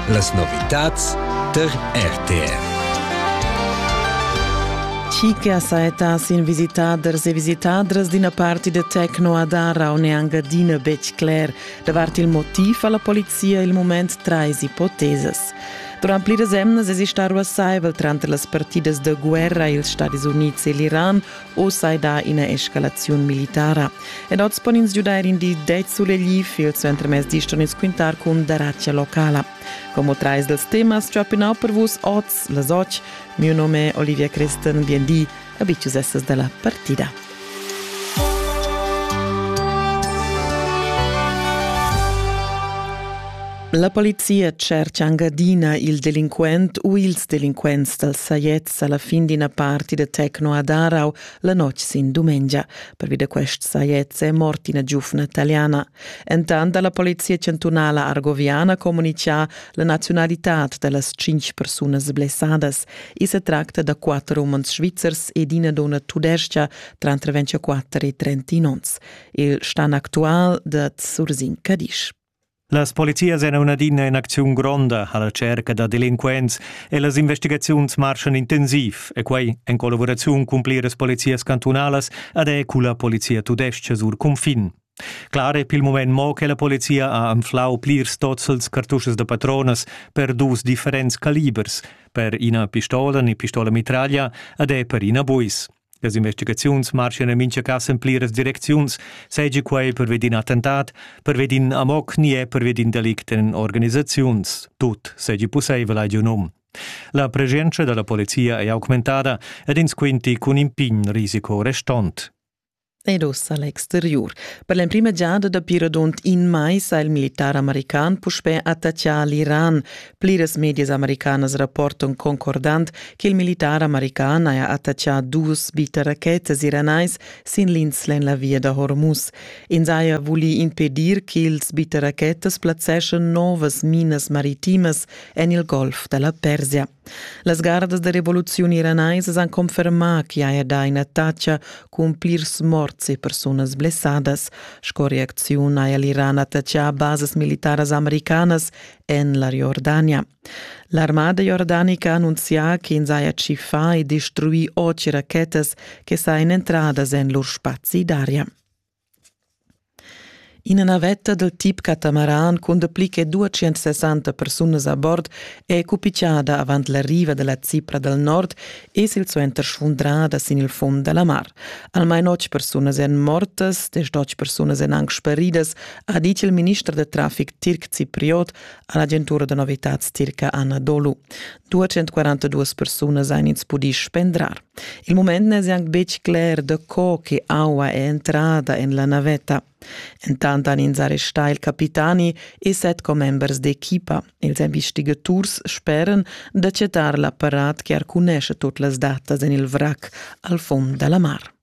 Las novitads tar RTR. Chicas saetas in visitaders e visitadras d'ina parti de Tecno Adara un e Angadina betg cler davart il motiv alla polizia il moment trais ipotesas. Durant pliras emnas esista ruassaivel tranter las partidas de guerra ils Stadis Units e l'Iran Oz ei da ina escalaziun militara ed oz pon ins giudair in di ded sulegli il suentermezdi ston ins quintar cun daratga locala. Como trais dels temas ciapinau per vus oz las och. Mio nome è Olivia Christen, bienvì a Bicius Essas della partida. La polizia cerca angadina il delinquent u ils delinquents dal Saiet sa la fin d'ina parti da Tecno a Darau la notg sin dumengia. Pervi da quest sajets è mort ina giufna italiana. Entant ha la polizia chantunala argoviana communitgà la naziunalitad da las cinq persunas blessadas. I sa tracta da quatter umans svizzers ed ina donna tudestga tranter 24 e 30 onns. Il stan actual da Zursin Cadisch. Las polizias èn adina en acziun gronda a la tscherca da delinquents e las investigaziuns marschan intensiv e quai en collavuraziun cun pliras polizias cantunalas ed è culla polizia tudestga sur cunfin. Clar è pil mument mo che la polizia ha anflau plirs tozzels cartuschas da patronas per dus differents calibers, per ina pistola ni pistola mitraglia ed è per ina buis. Las investigaziuns marschan en mintga cas en pliras direcziuns, seigi quei pervedi in attentat, pervedi in amok ni è pervedi in delict en organisaziuns. Tut seigi pusseivel, hai giu num. La presenza dalla polizia è augmentada ed ins quinti cun in pign risiko restont. ed ossa l'exteriur. Per l'emprima giada dapi radund in mais ha il militar american puspè attaccà l'Iran. Pliras medias americanas rapportan concordant che il militar american haja attaccà dus biterachetas iranais sin l'insla en la via da Hormuz. Ins haja vulì impedir ch'ils biterachetas plazzeschan novas minas maritimas en il golf da la Persia. Las gardas da revoluziun iranaisas han confermà ch'i haja dà ina tacha cun plirs morts e persunas blessadas. Sco reacziun haja l'Iran attachà basas militaras americanas en la Jordania. L'armada jordanica ha annunzià ch'ins haja tschiffà e destruì otg rachetas che sajan entradas en lur spazi d'aria. Ina navetta dal tip catamaran cun dapli che duatschient-sessanta persunas a bord è cupigiada avant la riva da la Cipra dal nord e silsuenter sfundrada sin il fund da la mar. Almain otg persunas èn mortas, desch persunas èn anc speridas, ha ditg il minister da traffic tirc cipriot a l'agentura da novitads tirca Anna Dolu. 242 persunas han ins pudì spendrar. Il mument n'è anc betg cler da co che aua è entrada en la navetta. Entant han ins arrestà il capitani e set commembers d'equipa. Els investigaturs speran da cettar l'apparat che arcunesce tut las datas en il vrac al fond da la mar.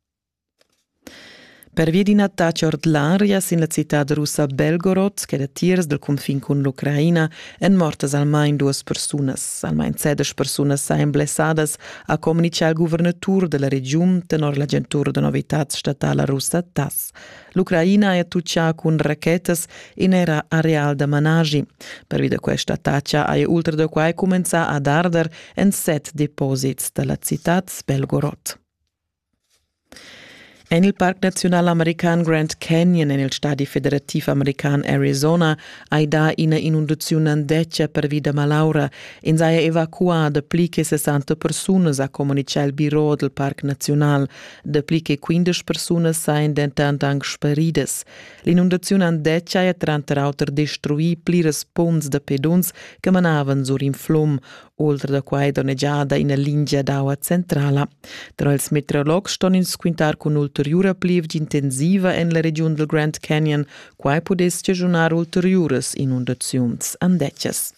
Pervi d'ina attacca ordinaria sin la citad russa Belgorod, che datiers dal cunfin cun l'Ucraina èn mortas almain duas persunas. Almain sedesch persunas sajan blessadas, ha communitgà il guvernatur da la regiun tenor l'agentura da novitads statala russa TASS. L'Ucraina è attutgà cun rachetas in era areal da managi. Pervi da questa attacca haja ultra da quai cumenzà ad arder en set deposits da la citad Belgorod. En il parc naziunal american Grand Canyon en il stadi federativ american Arizona hai dà ina inundaziun andetga pervi da malaura. Ins haja evacuà dapli che 60 persunas, ha communitgà il biro dal parc naziunal. Dapli che 15 persunas sajan dentant anc sparidas. L'inundaziun andetga haja tranter auter destruì pliras punts da peduns che manavan sur in flum. Ultra da quai donnegiada ina lingia d'aua centrala. Tra ils meteorologs ston ins quintar cun ulteriura plievgia intensiva en la regiun dal Grand Canyon. Quai pudess giagiunar ulteriuras inundaziuns andetgas.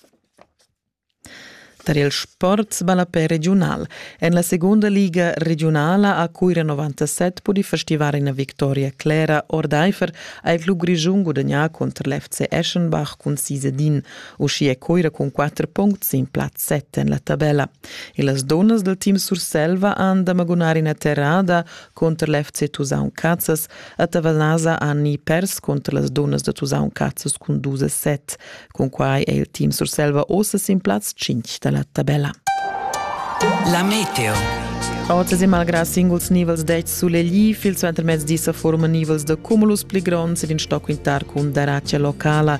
Tar il sport ballapè regiunal. En la segunda liga regionala a Cuira 97 pudì festivar ina victoria clera ordaifer ha il club grischun gudagnà cunter l'FC Eschenbach cun sis ed in. Uschia è Coira cun quatter puncts sin plaz set en la tabella. E las dunnas del team Surselva han da magunar ina terrada cunter l'FC Tusaun Cazzas. A Tavanasa han ni pers cunter las dunnas da Tusaun Cazzas cun dus a set. Cun quai è il team Surselva ossa sin plaz 5 da la tabella. La Meteo Oz e malgrà singuls nivels dets sulegli, il suentermezdi sa forma nivels da cumulus pli gronds ed in stoc intar cun daratgia locala.